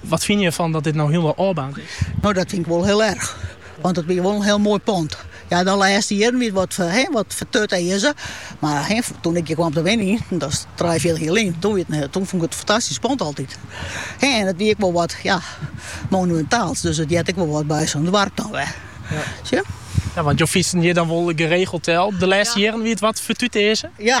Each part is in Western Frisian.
Wat fine je fan dat dit no hielendal ôfbaarnd is? No, dat fyn ik wol hiel erch. Want it wie wol in hiel moai pand. Ja, de lêste jierren wie it wat, he, wat fertutearze. Maar he, toen ik hjir kaam te wenjen, dat is trijenfjirtich jier lyn, toen, wie it, toen fûn ik it in fantastysk pand altyd. He, en it wie ek wol wat, ja, monumintaals. Dus it heart ek wol wat by sa'n doarp dan wer. Ja. Zie je? Ja, want je fytse hjir dan wol geregeld del. De lêste jierren wie it wat fertutearze. Ja,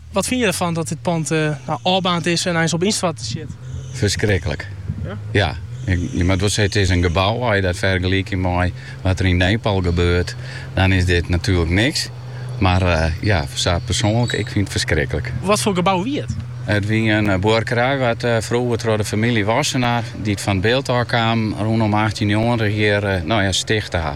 Wat fine je derfan dat dit pand ôfbaarnd is en eins op ynstoarten stiet? Ferskriklik. Ja, je moat wol sizze, it is in gebou. As je dat fergelykje mei wat der yn Nepal gebeurt, dan is dit natuerlik niks. Mar ja, sa persoanlik, ik fyn it ferskriklik. Watfoar gebou wie it? It wie in buorkerij wat froeger troch de famylje Wassenaar, dy't fan It Bilt ôf kamen, rûnom achttjinhûnderttritich hjir stichte ha.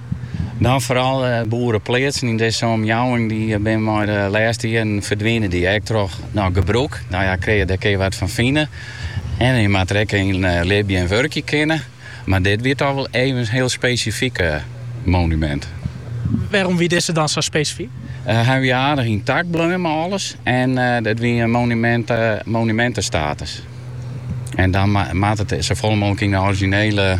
Dan foaral boerepleatsen yn dizze omjouwing dy bin mei de lêste jierren ferdwinende, ek troch no gebrûk. No ja, krije der kear wat fan fine en je moatte der ek yn libje en wurkje kinne. Mar dit wie toch wol even in hiel spesifyk monumint. Wêrom wie dizze dan sa spesifyk? Hy wie aardich yntakt bleaun mei alles en it wie in monumint monumintestatus. En dan moat it safolle mooglik yn de orizjinele.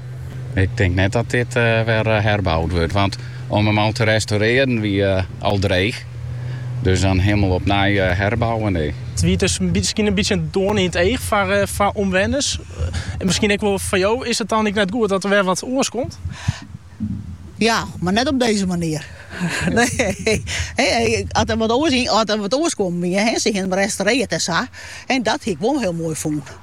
Ik tink net dat dit wer herboud wurdt, want om him al te restaurearjen wie al dreech. Dus dan hielendal op nij herbouwen, nee. It wie dus miskien in bytsje in doarn yn it each foar omwenners. En miskien ek wol foar jo. Is it dan ek net goed dat der wer wat oars komt? Ja, mar net op dizze manier. Nee. As der wat oars kommen wie, en se hiene him restaurearre en sa, dat hie ik wol hiel moai fûn.